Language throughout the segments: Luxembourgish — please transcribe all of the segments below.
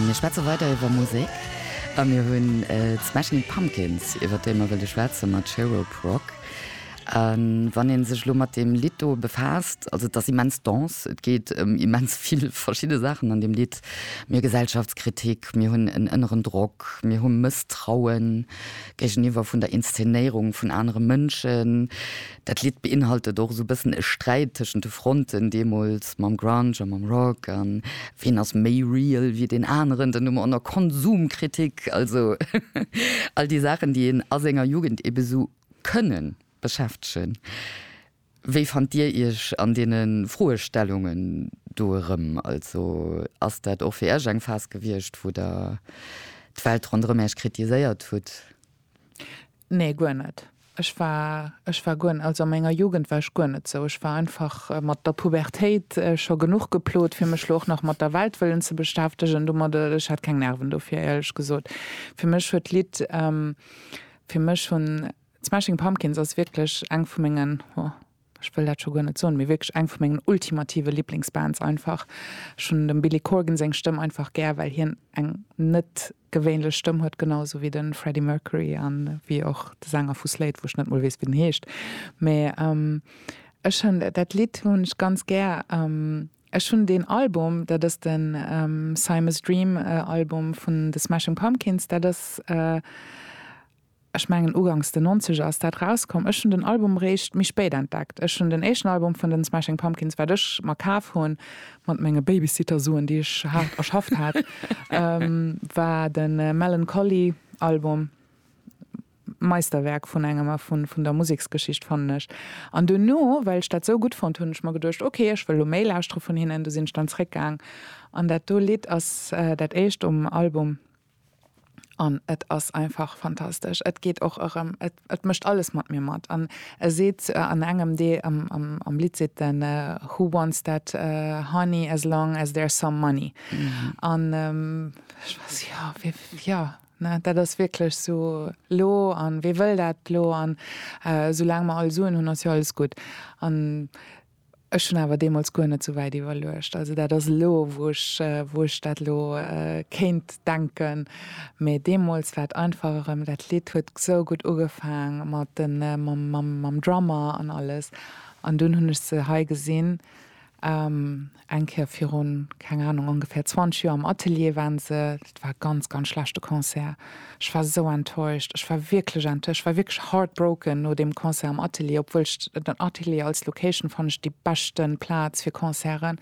Mir schwätze weider iwwer Musek a mir hunn d'Smashing Pumpkins, iwwer déi mer wëlle schwätzen, mat Cherub Rock. A wann ee sech elo mat deem Lidd do befaasst, also et ass immens dense, et geet ëm immens vill verschidde Saachen an deem Lidd, mir Gesellschaftskritik, mir hunn en ënneren Drock, mir hu Mësstraue géigeniwwer vun der Inszenéierung vun anere Mënschen, Dat Lidd beinhaltet och esou bëssen e Sträit tëschent de Fronten deemools mam Grunge a mam Rock a ween ass méi real wéi deen aneren, dann hu mer och nach Konsumkritik, also all déi Saachen déi een a senger Jugend ebe esou kënne beschäftegen. Wéi fannt Dir Iech an deene Froestellungen do erëm? Also ass dat och fir Iech eng Phas gewiescht wou Der d'Welt ronderëm Iech kritiséiert hutt? Nee guer net. Ech war, ech war guer, also a menger Jugend war ech guer net sou. Ech war einfach mat der Pubertéit scho genuch geplot, fir mech lo och nach mat der Welt wëllen ze beschäftegen domat. Ech hat keng Nerven dofir, éierlech gesot. Fir mech huet d'Lidd, fir mech hunn d'Smashing Pumpkins ass wierklech eng vu mengen, ho, ech wëll dat scho guer net soen, mee wierklech eng vu mengen ultimative Liblingsbands einfach. Ech hunn dem Billy Corgan seng Stëmm einfach gär, well hien eng net gewéinlech Stëmm huet, genau esou wéi de Freddie Mercury a wéi och de Sänger vu Slade, wou ech net mol weess, wéi den heescht. Mee ech hunn dat Lidd hunn ech ganz gär. Ech hunn deen Album, dat ass de Simus Dream Album vun de Smashing Pumpkins, dat ass. Ech mengen ugangs den Nonzeger ass dat rauskomm. Ech hunn den Album réischt méi spéit entdeckt. Ech hunn den éischten Album vun den Smashing Pumpkins, wat ech mer kaf hunn, mat menge Babysitter-Suen, déi ech haart erschafft hat, war de Mellon Collie Album. Meisterwerk vun engem a vun der Museksgeschicht fannen ech. An duerno, well ech dat sou gutt fonnt, hunn ech mer geduecht, ok, ech wëll elo méi lauschtere vun hinnen. Du sinn ech dann zréckgaang an dat do Lidd ass dat éischt um Album. An et ass einfach fantastesch. Et geet och erëm, et, et mécht alles mat mir mat. An e seet an engem dee, am, am, am Lidd seet en Who wants that honey as long as there's some money. An ech war esou, jo, wee, jo, ne, dat ass wierklech esou lo. An wee wëll dat lo? An esoulaang mer all Suen hunn, ass jo alles gutt. An. Ech hunn awer deemools guer net esou wäit iwwerluecht. Also dat ass elo, wou ech, wou ech dat elo kéint denken. Mee deemools war et einfach erëm, dat Lidd huet esou gutt ugefaang mat de, mam, mam, mam Drummer an alles. An dunn hunn ech se hei gesinn, eng Kéier virun, keng Anung, ongefähr 20 Joer am Atelier waren se. Dat war e ganz, ganz schlechte Concert. Ech war esou enttäuscht. Ech war wierklech ent, ech war wierklech heartbroken no deem Concert am Atelier, obwuel ech den Atelier als Location fannen ech déi beschte Plaz fir Concerten,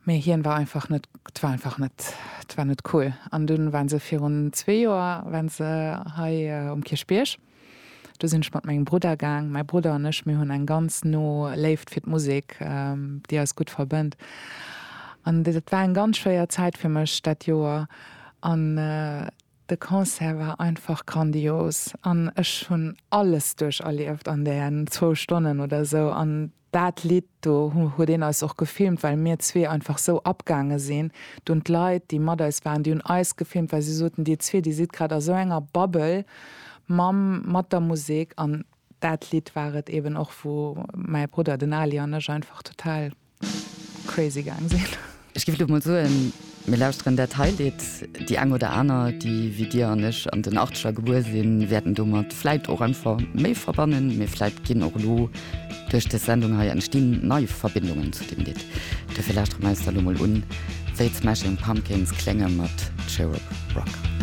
mee hien war einfach net, et war einfach net, et war net cool. An dunn waren se virun zwee Joer waren se hei um Kierchbierg. Do sinn ech mat mengem Brudder gaang. Mäi Brudder an ech, mir hunn eng ganz no Léift fir d'Musek, déi eis gutt verbënnt. An dat war eng ganz schwéier Zäit fir mech dat Joer. An de Concert war einfach grandios an ech hunn alles duercherlieft an däen zwou Stonnen oder sou. An Daat Lidd do huet een eis och gefilmt well mir zwee einfach sou abgaange sin dunn. D'Leit déi mat eis waren déi hun eis gefilmt well se soten dir zwee dir sidd grad a sou enger Bubble mam mat der Musek an daat Lidd war et eben och wou mäi Brudder den Ali an ech einfach total crazy gaang sin. Ech giff lo mol soen, mir lauschteren dat hei Lidd. Déi eng oder aner, déi wéi dir an ech an den Achteger gebuer sinn, wäerten domat vläit och einfach méi verbannen. Mee vläit ginn och elo duerch des Sendung hei entstinn nei Verbindungen zu deem Lidd. Dofir lauschtere mer eis da lo mol un, wéi d'Smashing Pumpkins klénge mat Cherub Rock.